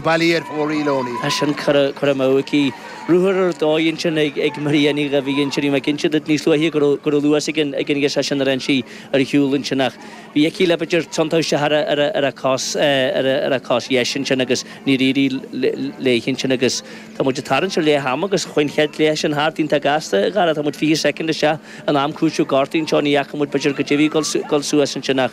ballaí ar Pháirí Loney. Tá sin curtha amú aici. Ruathar ar dóigh ansin ag Maria Ní Dhuibhir ansin. Bhí mé ag inse duit níos luaithe go raibh luas ag an ghirseach sin ar fhan sí ar shiúl ansin ach bhí aici le b'fhéidir tiontú isteach ar a cos dheis ansin agus níor éirigh léi ansin agus tá muid ag tarraingt ar leath ama agus chuaigh an chéad leath sin thart iontach gasta a Dhara. Tá muid 20 soicind isteach in am cúitimh gortaithe anseo. Ní fhaca muid b'fhéidir go dtiocfaidh dul suas ansin ach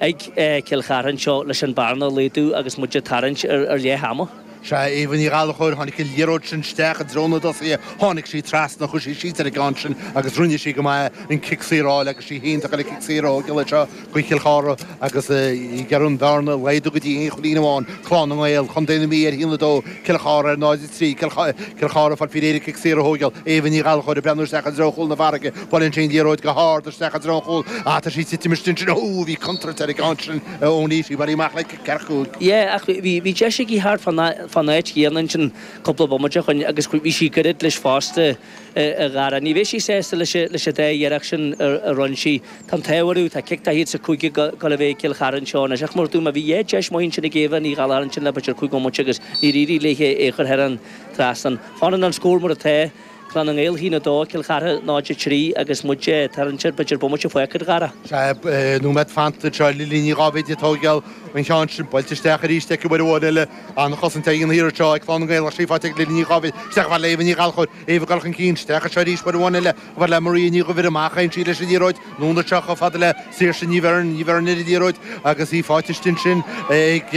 ag Cill Chartha anseo leis an bearna a laghdu agus muid ag tarraingt ar leath ama. Sea, Éabha Ní Ghallachóir, tháinig an liathróid sin isteach i dtreo na dtosaithe, tháinig sí trasna, chuaigh sí síos ar an gceann sin agus rinne sí go maith an cic saor a fháil agus sí fhéin atá ag goil an cic saor a thóigeáil anseo do Cill Chartha agus ag iarraidh an bhearna a laghdú go dtí aon chúilín amháin. Clann na nGael, Contae na Mí ar 1, 2, Cill Chartha ar 0, 3. Cill Chartha ag fáil faoi réir an cic saor a thóigeáil, Éabha Ní Ghallachóir ag breathnú isteach i dtreo chúl na farraige, Buaileann sí an liathróid go hard isteach i dtreo chúl ach tá sí ag titim isteach ansin. Ohh bhí contúirt ar an gceann sin ó Niamh, bhí Mary amach le cic thar chúl. Yeah ach bhí deis aici thart fán áit chéanna ansin cúpla bomaite ó shoin agus bhí sí gairid leis fosta a Dhara. Ní bheidh sí sásta leis an dá iarracht sin a rinne sí. Tá an t-ádh orthu, tá cic 45 ag gabháil a bheith ag Cill Chartha anseo anois ach mar dúirt mé bhí dhá deis maith ansin ag Éabha Ní Ghallachair ansin le b'fhéidir cúig bhomaite agus níor éirigh léithe é a chur thar an trasnán. Fanann an scór mar atá. Clann na nGael, 1, 2, Cill Chartha 0, 3 agus muid ag tarraingt ar b'fhéidir bomaite fágtha a Dhara. Sea nóiméad fanta anseo, Lily Ní Dháibhéid ag tóigeáil an cheann sin, buailte isteach arís ach uair amháin eile. An-chosaint á dhéanamh thiar anseo ag Clann na nGael ach sí faighte ag Lily Ní Dháibhéid. Isteach a bhaile Éabha Ní Ghallchóir, Éabha ag dul chun cinn, isteach anseo arís uair amháin eile, a bhair le Maria Ní Dhuibhir amach, chaill sí leis an liathróid, Anonn anseo chomh fada le Saoirse Ní Bheirn. Ní Bheirn ar an liathróid agus í fáighte istigh ansin ag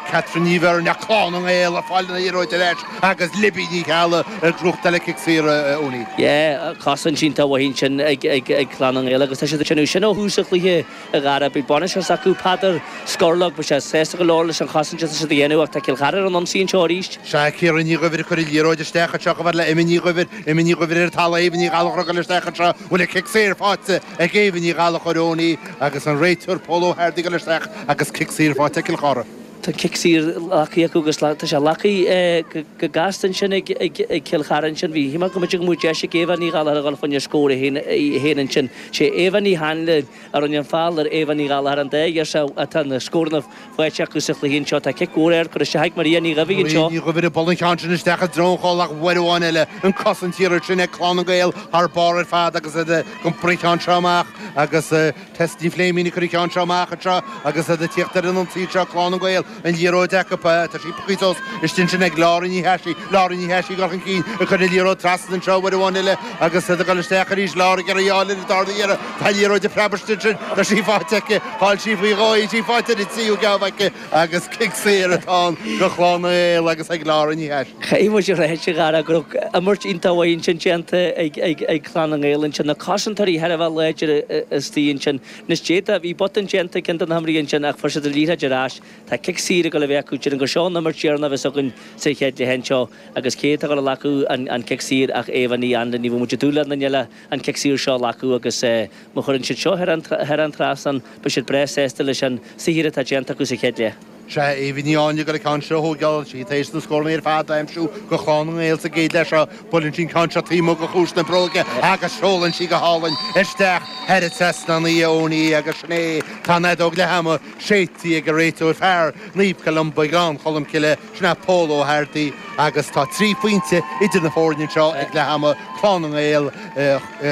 Catherine Ní Bheirn ach Clann na nGael ag fáil an liathróid ar ais agus Libby Ní Cheallaigh ag gnóthachtáil cic saor ionaidh. Cosaint iontach maith ansin ag Clann na nGael agus tá siad ag déanamh sin ó thús an chluiche a Dhara. Beidh bainisteoir acu, Peadar Scorlach, beidh sé sásta go leor leis an chosaint atá siad a dhéanamh ach tá Cill Chartha ar an ionsaí anseo arís. Sea, Ciara Ní Dhuibhir ag cur an liathróid isteach anseo chomh fada le Emma Ní Dhuibhir. Emma Ní Dhuibhir chomh fada le Éabha Ní Ghallachóir ag goil isteach anseo, an bhfuil cic saor faighte ag Éabha Ní Ghallachóir ón í agus an réiteoir Pól Ó hEardaigh ag goil isteach agus cic saor faighte ag Cill Chartha. Tá cic saor glactha acu agus tá sé glactha go gasta ansin ag Cill Chartha ansin. Bhí mé ag déanamh go mbeadh deis ag Éabha Ní Ghallachóir a dhul chun scór í fhéin ansin. Sé Éabha Ní hAinle. a rinne an feall ar Éabha Ní Ghallachair an dá Éabha atá na scóranna faighte acu sa chluiche anseo. Tá cic mór ard curtha isteach ag Maria Ní Dhuibhir anseo. Ní Dhuibhir ag bualadh an ceann sin isteach i dtreo an chúil ach uair amháin eile an cosaint thiar ansin ag Clann na nGael thar barr ar fad agus iad ag iompar an ceann seo amach agus Tess Ní Phléimín ag cur an ceann seo amach anseo agus iad ag tíocht ar an ionsaí anseo Clann na nGael. an liathróid acu. Tá sí pioctha suas istigh ansin ag Laura Ní Chathasaigh. Laura Ní Chathasaigh ag dul chun cinn, ag cur an liathróid trasna anseo uair amháin eile agus iad ag dul isteach arís. Laura ag iarraidh í a fháil ar an dara hiarraidh. Tá an liathróid ag preabadh istigh ansin. Tá sí faighte aici. Chaill sí faoi dhó í. Tá sí faighte ar an tríú geábh aici agus cic saor atá ann do Chlann na nGael agus ag Laura Ní Chathasaigh. Caithfidh muid a rá go raibh imirt iontach mhaith ansin déanta ag Clann na nGael ansin. Na cosantóirí thar a bheith láidir istigh ansin. Níos déanaí, bhí botún déanta ag ceann de na himreoirí ansin ach fuair siad an liathróid ar ais. Tá cic saor ag dul a bheith acu. Déarfainn gur seo an imirt dheireanach a bheas againn sa chéad leath anseo agus cé atá ag dul a ghlacadh an cic saor ach Éabha Ní Áinle. Ní bheadh muid ag dúil le héinne eile an cic saor seo a ghlacadh agus má chuireann siad seo thar an trasnán beidh siad breá sásta leis an saothar atá déanta acu sa chéad leath. Sea, Éabha Ní Áinle ag dul an ceann seo a thógáil. Tá sí tar éis na scóranna ar fad a aimsiú do Chlann na nGael sa gcéad leath seo, buaileann sí an ceann seo taobh amuigh de chiumhais na bróige agus seolann sí go hálainn isteach thar an trasnán, Owenie, agus sin é. Tá an fheadóg leath ama séidte ag an réiteoir fear Naomh Columba Gleann Cholm Cille, sin é Pól Ó hEardaí agus tá trí phointe idir na foirne anseo ag leath ama, Clann na nGael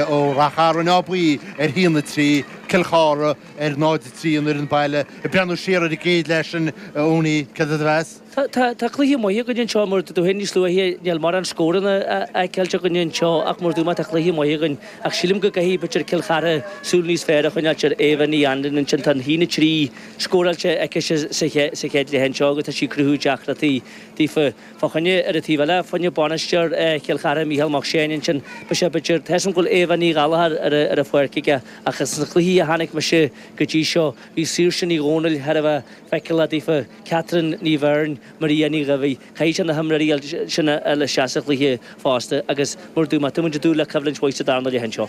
ó Ráth Chairn Áth Buí ar 1-3, Cill Chartha. ar 0-3 an fhoireann baile ag breathnú siar ar an gcéad leath sin Owenie, cad é do mheas? Tá cluiche maith againn anseo, mar a dúirt tú féin níos luaithe níl mórán scóranna a fheiceáilt againn anseo ach mar a dúirt mé tá cluiche maith againn ach sílim go gcaithfidh b'fhéidir Cill Chartha súil níos fearr a choinneáilt ar Éabha Ní Áinle ansin, tá 1-3 scóráilte aici sa chéad leath anseo agus tá sí ag cruthú deacrachtaí daofa i gcónaí. Ar an taobh eile fá choinne bainisteoir Chill Chartha, Mícheál Mac Seáin ansin, beidh sé b'fhéidir, thaispeáin go bhfuil Éabha Ní Ghallachar ar an pháirc aige. Agus sna cluichí a chonaic mise go dtí seo, bhí Saoirse Ní Dhomhnaill thar a bheith feiceálach daofa, Catherine Ní Bheirn, Maria Ní Dhaibhidh, caithfidh siad na himreoirí sin a fháil isteach sa chluiche fosta agus, mar a dúirt mé tá muid ag dúil le coimhlint mhaith sa darna leath anseo.